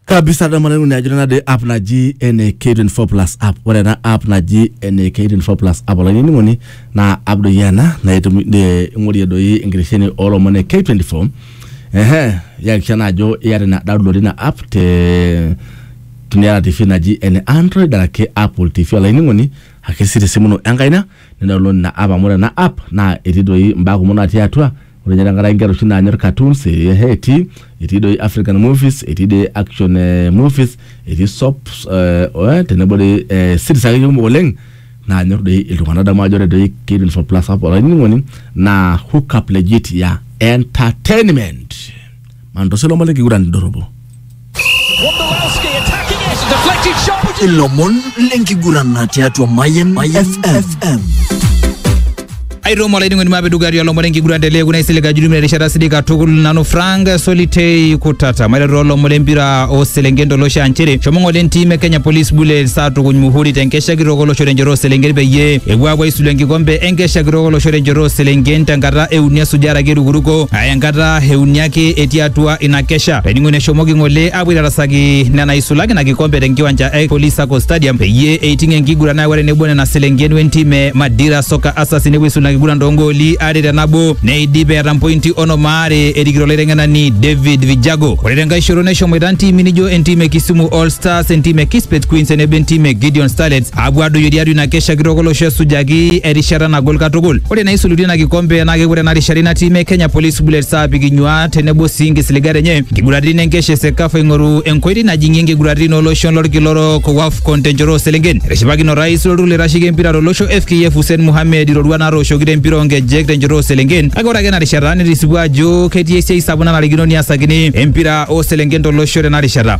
kabisa dama nanu ajo nena de app naji ene K24 plus app ore ena app naji ene K24 plus app olainining'oni naa app doi ena naitumi ne- ing'orie doi enkitesheni oolomon e K24 ehe iyakikisha naa ajo iyata ina download ina app te teniata tv naji ene android araki apple tv olainining'oni ake sii tesimu ino enkaina nidownload ina app amu ore ena app naa etii doi imbaa kumok natii atua Ore ninye tenkaraki inkera oshi naanyor cartoons, etii e Haiti, etii doi African movies, etii doi action eh, movies, etii soaps eh, tenebo doi eh, series akeyie kumok oleng naanyor doi iltung'anak. Adamu ajo ore doi K24 plus app olainining'oni naa hook up legit ya entertainment. Mantosho lomon lenkiguran indorropo. Wondolowski attacking it. Deflected shot. Would you ilomon lenkiguran tiatua Mayen FM. aitomo olainining'oni maapeduka atua lomon enkiguran te leekuna isilig ajurumi erishata sidai katukul nanu frank solitei kutata maiteru olomon lempira ooselenken tolosho aa nchere shomo ng'ole entim e kenya police bullets aatukuny muhuri te nkesha kitok olosho tenchoto ooselenken peyie epuo aapuo aisulu enkikombe enkesha kitok olosho tenchoto ooselenken tenkata euni esujare ake erukuruko aya enkata e uni ake etii atua ina kesha. Olainining'oni eshomoki ng'ole aapuo aitarasaki nena eisulaki ina kikombe te nkiwanja e Police Sacco Stadium peyie eiting enkiguran nayawua tenebo nena selenken we ntim e Madira Soccer Asasi nepuo aisula ina kiguran too ngooli are te nabo neidip eeta mpointi onom aare erikito olaiteng'enani David Vijago. Ore tenkae shoto neshomoita ntiimi nijo entim e Kisumu All Stars, entim e Kispet Queens tenebo entim e Gideon Starlets Aapuo adoyio tiatua ina kesha kitok olosho esujaki erishata nagol katukul. Ore naisulutua ina kikombe naa kepuo tena rishata ina tim e Kenya Police Bullets aapik inyuaat tenebo sii inkisiligat enye inkiguraritin enkesha e Sekafa eing'oru enkoitoi najing'ie inkiguraritin ooloshon lolkila orok o Wafcon tenchoto ooselenken. Etishipakine orais lolturur loitasheki empira tolosho FKF Hussein Mohamed iroruat naatooshoki tempira oonkejek tenchoto ooselenken kake ore ake ena rishata netisipua ajo ketii esiai sapuk nanarikino niasakini empira ooselenken tolosho tena rishata.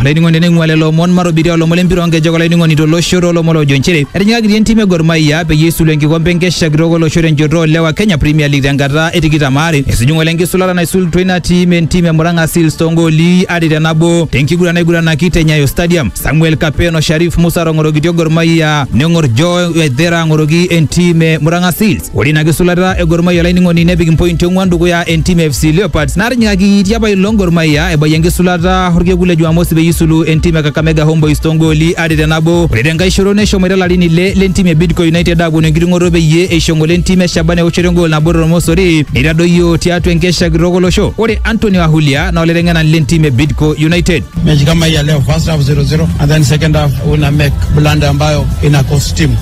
Olainining'oni teneing'ua lelo omon matobiria olomon lempira onkejek olainining'oni tolosho toolomon loojo nchere etijing'akitia entim e Gor Mahia peyie eisulu enkikompe enkesha kitok olosho tenchoto oolewa Kenya Premier League tenkata e tikitam aare. Esuju ng'ole enkisulata naisulutua ina tim entim e Murang'a Seals toongooli are te nabo tenkiguran naiguranaki te Nyayo Stadium. Samuel Kapen o Sharif Musa aatong'orokitia Gor Mahia neng'or Joe Waithera ang'oroki entim e Murang'a Seals. Ore ina kisulata e Gor Mahia olainining'oni nepik impointi ong'uan dukuya entim e FC Leopards natinyikaki tiapa ilo Gor Mahia ebayie enkisulata orkekun le Jumamosi peyie isulu entim e Kakamega Homeboys toongooli are te nabo. Ore tenkae shoto neshomoita ilarin ile lentim e Bidco United aaponu enkiting'oto peyie eisho ngole entim e Shaban eoshoto engool nabo tormosori neitadoyio tiatua enkesha kitok olosho. Ore Anthony Wahulia naa olaiteng'enani lentim e Bidco United. mechi kama hii ya leo first half 0-0 and then second half una make blunder ambayo ina cost team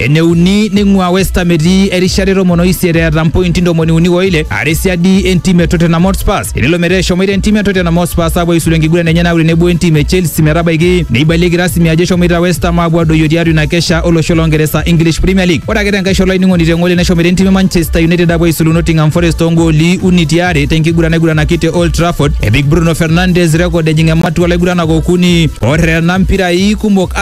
eneuni neing'ua West Ham etii erishata e tomon o isiet eeta mpointi ntomoni uni o ile are siadi entim e Tottenham Hotspur tenelo metaa eshomoita entim e Tottenham Hotspur aapuo aisulu enkiguran enye naaku tenebo entim e Chelsea metabaiki neibalieki rasmi ajo eshomoita West Ham aapuo adoyio tiatua ina kesha olosho loo Ngeresa English Premier League ore ake tenkae shoto ainining'oni te ng'ole neshomoita entim e Manchester United aapuo aisulu Nottingham Forest too ngooli uni ti are tenkiguran naiguranaki te Old Trafford epik Bruno Fernandes rekod ejing ematua laiguranak okuni oterena mpirai kumok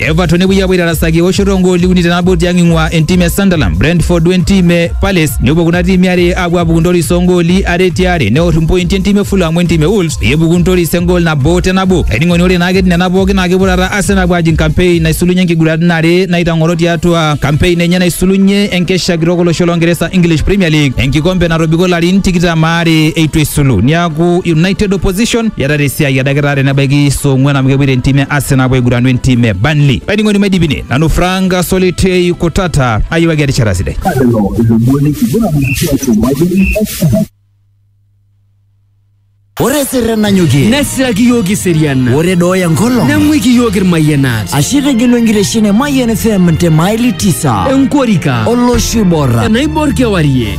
Everton nepuoi apuo aitarasaki eoshoto ogooli uni tenabo tiang ing'ua entim e Sunderland, Brentford wentim e Palace nepuo kuna tiimi are apuo apuku ntoris ogooli are tiare neor impointi entim e Fulham wentim e Wolves peyie epuku ntoris egool nabo tenabo. Ainining'oni ore naake nena pookin naa kepuo taata Arsenal apuo ajing campaign naisulunye nkiguraritin are naitang'oro tiatua campaign enye naisulunye enkesha kitok olosho loo Ngeresa English Premier League enkikombe natobiko larin tikitam aare eitu esulu. Niaku United Opposition Etata esiai edakita tenebaiki saa ong'uan amu kepuoita entim e Arsenal apuo aiguranu entim e Burnley. Olainining'oni maidipine nanu Frank Solitei Kutata ayiewaki erishata sidai. Lelo ilomon lenkiguran tiatua Mayian FM. Ore sirre nanyokie nesiraki yiok iseriana ore dooyo enkolong neng'uiki yiok irmayianat ashe itegelu enkitesheni e Mayian FM te maili tisa enkorika olosho oibor enaibor kewarie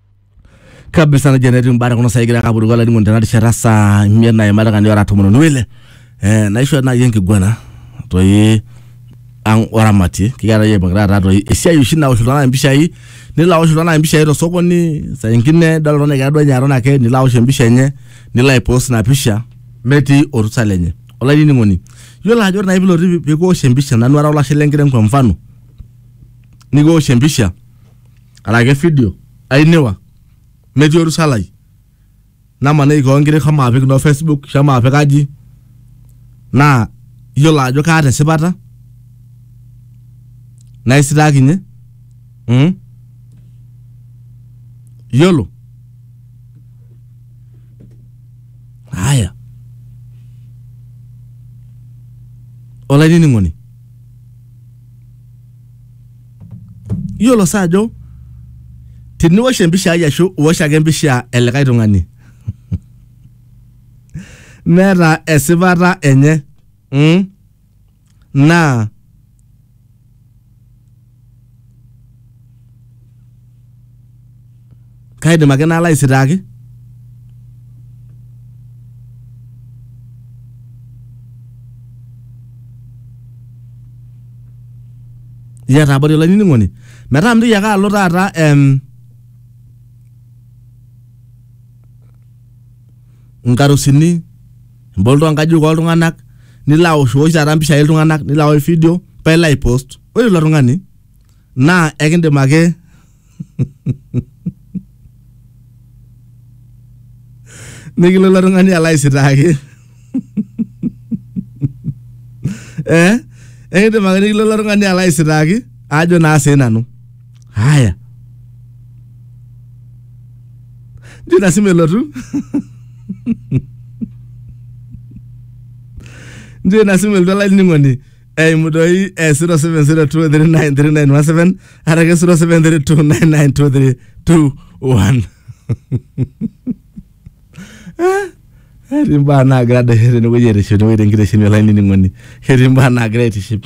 kabisa nejo netii mbaa tekuna saai egira ake apuruko olainining'oni tena rishata saa imiet naima dakikani ora tomon onoo ile eh, naishoo naaji enkiguana toi ang oramatie kikiata yie pokira taata toi esiai oshi naosh iltung'anak impishai nilo aosh iltung'anak impishai tosokoni saa ingine idol oltung'ani egira duo ninye aton ake nilo aosh empisha enye nilo aipost ina pisha metii orusa lenye olainining'oni yiolo ajo ore naaji pilotu pikiwosh empisha nanu ara olashe lenkiteng kwa mfano nikiwosh empisha arake video ainiwa metii orusalai namaniki koon nkiri shomo apik no facebook shomo apik aji naa iyiolo ajo kaata esipata naisitaakinye mm? iyiolo haya olainining'oni iyiolo saa ajo tiniwosh empisha ai ashu iwosh ake empisha elikae tung'ani neeta esipata enye mm? naa kaidim ake nalo aisitaaki. Iyata abori olainining'oni metaa mintoki ake alo taata em, nkarusini ebol too nkajijik ooltung'anak nilo aoshiosh taata impishai ooltung'anak nilo aosh vidio paa ilo aipost ore ilo tung'ani naa ekindim ake nikilo ilo tung'ani alo aisitaaki eh ekindim ake nikilo ilo tung'ani alo aisitaaki ajo naa sii nanu haya njo ina simu elotu njo ina simu elotu olainining'oni eimu doi eh, 0702393917 arake 0732992321 etii imbaa naagira adesha tenewueji aitiship tenewueji tenkitesheni olainining'oni ketii imbaa naagira aitiship